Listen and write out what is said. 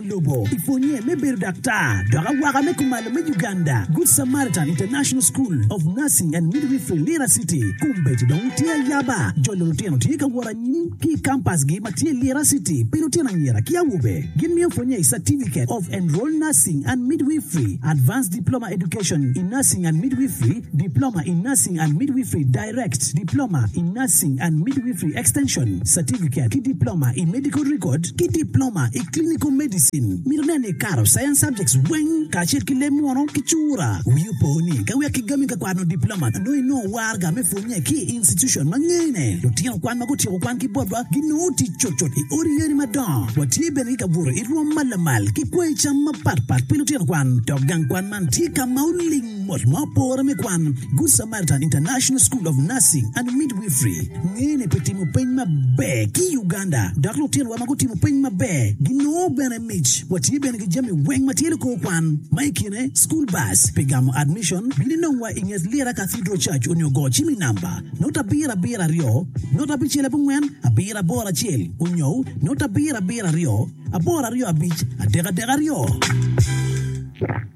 lobo i pwonye me bedo daktar dok awaka me kumalo me Uganda, Good Samaritan International School of Nursing and Midwifery, Lira City. Kombeddi dong tye ayaba, jolo lutino tye ka wot anyim ki i kampasgi ma tye Lira City pi lutino anyira ki awobe. Gimiyo pwonye i Certificate of Enrolled Nursing and Midwifery, Advanced Diploma Education in Nursing and Midwifery, Diploma in Nursing and Midwifery, Direct Diploma in Nursing and Midwifery Extension Certificate ki Diploma i Medical Record ki Diploma i Clinical Medicine. Mito neno ni ikato Science subjects weng kacel ki leb munu ki cura. Wii opo ni ka wek igami ka kwano Diploma nongo inongo warga me pwonye ki i institution ma ngene. Lutino kwan ma gutyeko kwan ki botwa ginongo tic cutcut i odi yeni madongo. Watye bene ki kabuto i rwom ma lamal ki kwai cam mapatpat pi lutino kwan. Dok gang kwan man tye ka ma oling mot ma opore me kwan. Good Samaritan. Carleton International School of Nursing and Midwifery ngene pi timo peny maber ki i Uganda, dok lutinwa ma gutimo peny maber ginongo bene mic. Watye bene ki jami weng ma tye likor kwan, ma i kine school bus pi gamo admission, bino inongwa i nget Lira Cathedral Church onyo go cim i namba note abiro abiro aryo note abicel abongwen abiro aboro acel onyo note abiro abiro aryo aboro aryo abic adek adek aryo.